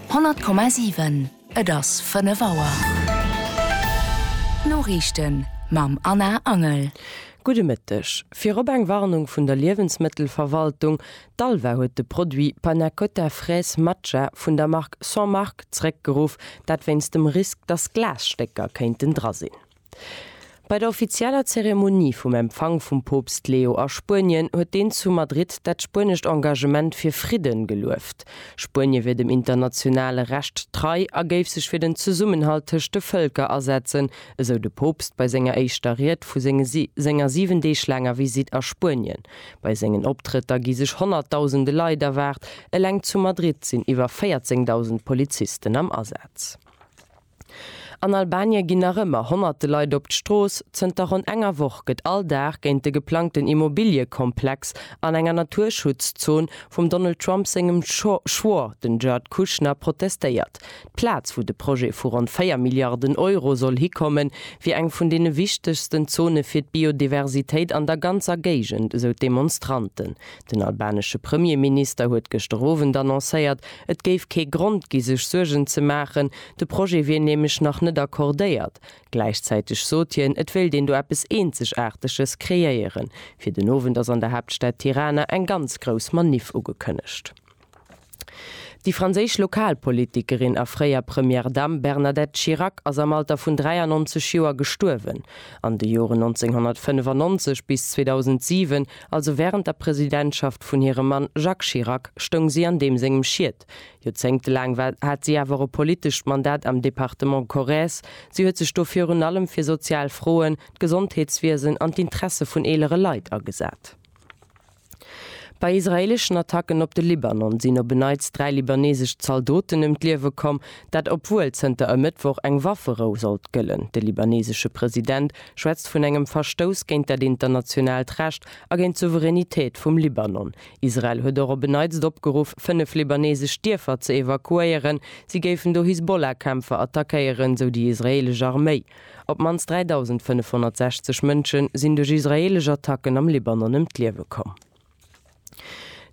100,7 Et ass 5 Auer. D'Noriichten mam Anna Angel. Gudde Mëtteg. Virop eng Warnung vun der Liewensmëttelverwaltung, D'ALVA huet de Produit Panna Cotta Fraise Matcha vun der Mark Sans Marque zréckgeruff, dat wéinst dem Risk, dass Glasstécker kéinten dra sinn. Bei der offizieller Zeremonie vum Empfang vum Poopst Leo a Spuenien huet deen zu Madrid dat spuenescht Engagement fir Fridden gelueft. Spuenie wier dem internationale Recht trei a géif sech fir den Zesummenhalt tëscht de Vëlker asetzen, esou de Poopst bei senger éischter Ried vu senger 7 Deeg laanger Visitt a Spuenien. Bei sengen Optrëtter gi sech honnertdausende Leit erwaart, eleng zu Madrid sinn iwwer 14.000 Polizisten am Asaz. An Albanie ginn nach ëmmer honnerte Leit op d'Strooss. Zënter ronn enger Woch gëtt all Dag géint de geplangten Immobiliekomplex an enger Naturschutzzon vum Donald Trump sengem Schwor, den Jared Kushner, protestéiert. D'Plaz, wou de Projet vu ronn 4 Milliarden Euro soll hikommen, wier eng vun deene wichtegsten Zone fir d'Biodiversitéit an der ganzer Géigend, esou d'Demonstranten. Den albanesche Premierminister huet gëschter Owend annoncéiert, et géif kee Grond gi sech Suergen ze maachen, de Projet wier nämlech nach net accordéiert. Gläichzäiteg sot hien, et wéilt een do eppes Eenzegaarteges kreéieren. Fir den Owend ass an der Haaptstad Tirana eng ganz grouss Maniff ugekënnegt. Déi franséisch Lokalpolitikerin a fréier Première Dame Bernadette Chirac ass am Alter vun 93 Joer gestuerwen. An de Joren 1995 bis 2007, also wärend der Presidentschaft vun hirem Mann Jacques Chirac, stoung si an deem sengem Schiet. Joerzéngtelaang war hat si awer och e politescht Mandat am Departement Corrèze. Si huet sech do virun allem fir sozial Froen, d'Gesondheetswiesen an d'Interesse vun eelere Leit agesat. Bei israeeleschen Attacken op de Libanon sinn op e Neits dräi libaneesesch Zaldoten ëm d'Liewe komm. Dat obwuel zënter e Mëttwoch eng Wafferou sollt gëllen. De libaneesesche President schwätzt vun engem Verstouss géint dat internationaalt Recht a géint d'Souveränitéit vum Libanon. Israel huet och op e Neits opgeruff, fënnef libaneesesch Dierfer ze evakuéieren, si géifen do Hisbollah-Kämpfer attackéieren, sou déi israeelesch Arméi. Op d'mannst 3.560 Mënsche sinn duerch israeelesch Attacken am Libanon ëm d'Liewe komm.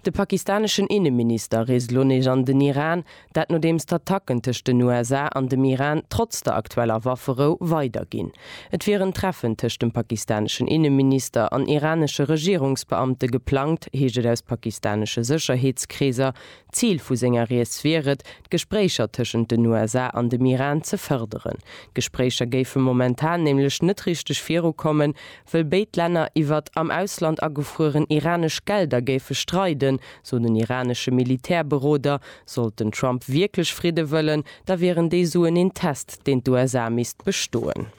De pakistaneschen Inneminister reest elo nees an den Iran, dat nodeems d'Attacken tëscht den USA an dem Iran trotz der aktueller Wafferou weider ginn. Et wier en Treffen tëscht dem pakistaneschen Inneminister an iranesche Regierungsbeamte geplangt, heescht et aus pakistanesche Sécherheetskreeser, Zil vu senger Rieds wier et, d'Gespréicher tëschent den USA an dem Iran ze fërderen. D'Gespréicher géife momentan nämlech net richteg virukommen, wëll béid Länner iwwert am Ausland agefrueren iranesch Gelder géife streiden, sou den iranesche Militärberoder. Sollt den Trump wierklech Fridde wëllen, da wieren déi Suen een Test, deen d'USA misst bestoen.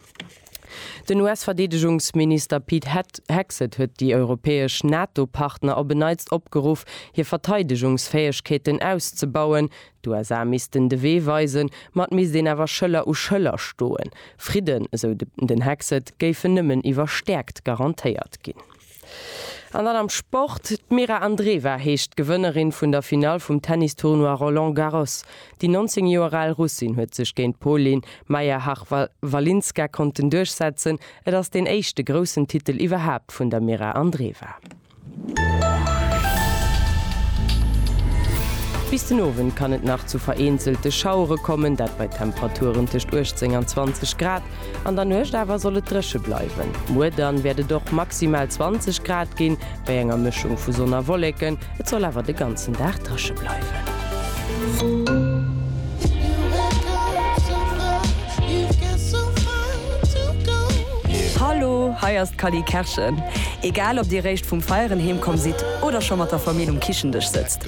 Den US-Verdeedegungsminister Pete Het Hegseth huet déi europäesch NATO-Partner op en Neits opgeruff, hir Verteidegungsfäegkeeten auszebauen. D'USA missten de Wee weisen, ma et misst een awer Schëller u Schëller stoen. Fridden, esou den Hegseth, géifen nëmmen iwwer Stäerkt garantéiert ginn. An dann am Sport, D'Mira Andreeva heescht d'Gewënnerin vun der Finall vum Tennis-Tournoi Roland Garros. Déi 19 Joer al Russin huet sech géint d'Polin Majerchak-Walinska konnten duerchsetzen. Et ass deen éischte groussen Titel iwwerhaapt vun der Mira Andreeva. Bis den Owend kann et nach zu vereenzelte Schauere kommen, dat bei Temperaturen tëscht 18 an 20 Grad. An der Nuecht awer soll et dréche bleiwen. Muer dann wäert et och maximal 20 Grad ginn, bei enger Mëschung vu Sonn a Wolleken. Et soll awer de ganzen Dag dréche bleiwen. Hallo, hei ass d'Cally Kerschen. Egal ob dir réischt vum Feieren heemkomm sidd oder scho mat der Famill um Kichendësch sëtzt,